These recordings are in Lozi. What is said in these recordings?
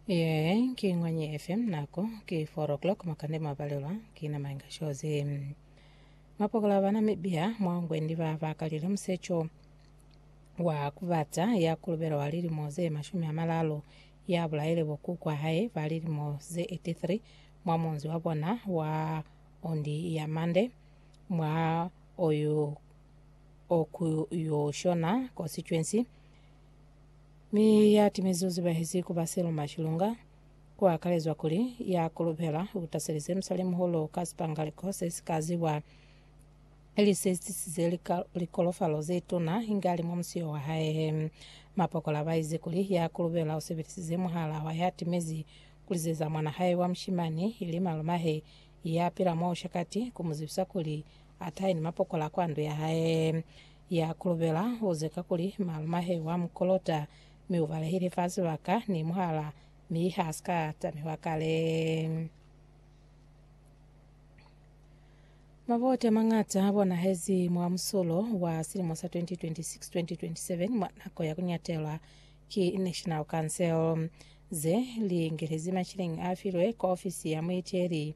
Yee, ki Ngwanyi FM nako ki 4 o'clock makande mwabalelwa ki na mainga shozi. Mapokola ba Namibia mwaongwe ndi ba bakalile musecho wa kubata ya kulubela wa lilimo ze mashumi a malalo ya bulaile bo kuku wa hae ba lilimo ze 83 mwa munzi wa bona wa ondi ya Mande mwa oyu okuyoshona constituency Mi ya timezi u zibahezi ku ba Selma Chilunga, ku akalezwa kuli ya kolobela u taselize musalimuholo ka sipangaliko se si ka ziwa, ili se tisize likolofalo ze tuna inge a li mwa musio wa hae. Mapokola ba ize kuli ya kolobela u sebelisize muhala wa ya timezi ku lizeza mwana hae wa mushimani, ili malumahe ya pila mwa Ushakati, ku mu zibisa kuli a tahe ni mapokola kwa ndu ya hae. ya kulubela uze kakuli malumahe wa mu kolota mi ubalehile fa sibaka ni muhala mi ha sika tamiwa kale. Maboti amangata a bonahezi mwa musulo wa silimo sa 2026-2027 mwa nako ya kunyatelwa ki National Council, ze li ngelezi mashilingi a filwe kwa ofisi ya muiteli.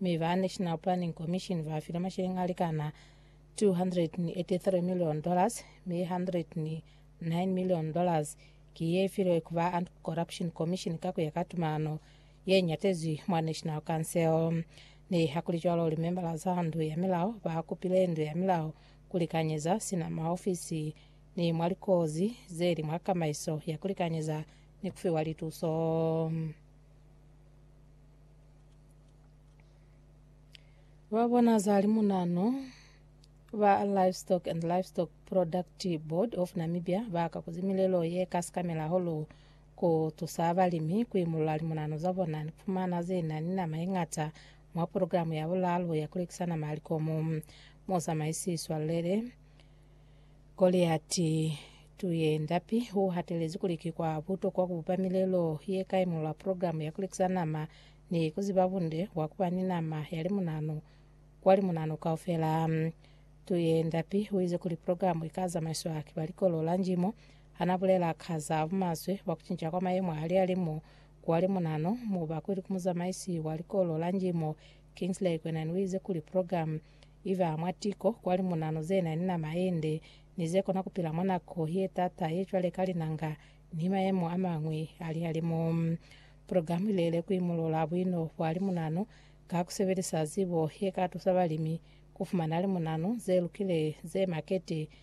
Mi ba National Planning Commission ba file masheleng a likana $283 million, mi $109 million ki ye filwe ku ba Anti-Corruption Commission ka ku ya ka tumalano ye ñatezwi mwa National Council. Nihakulicwalo, limembala za Ndu ya Milao ba kupile Ndu ya Milao ku likanyeza sina maofisi ni mwa likozi ze li mwa kamaiso ya ku likanyeza ni ku fiwa lituso. Ba bona za limunano ba Livestock and Livestock Product Board of Namibia ba ka kuzi milelo ye ka sikamela holu ku tusa balimi ku imulula limunano za bona ni fumana ze na ni nama ye ngata mwa programu ya bulalo ya ku lekisa nama ya likomo. Musamaisi Swalele Goliati Tuyendapi u hatelezi kuli ki kwa butokwa ku bupa milelo ye ka imolola programu ya ku lekisa nama ni ku ziba bunde bwa ku ba ni nama ya limunanu kwa limunanu kaufela. Tuyendapi u ize kuli programu i ka zamaiswa ki ba Likolo la Njimo ha na bulela ka za bumaswe bwa ku cinca kwa mayemo a lihalimu kwa limunanu. Mubakuli ku muzamaisi wa Likolo la Njimo, Kingsley Kwenan u ize kuli programu iba mwa tiko kwa limunanu ze na ni nama ye nde ni ze kona ku pila mwa nako ye t'ata ye cwale ka linanga ni mayemo a mañwi a lihalimu. Program i lele ku imulula buino bwa limunanu ka ku sebelisa zibo ye ka tusa balimi ku fumana limunanu ze lukile ze makete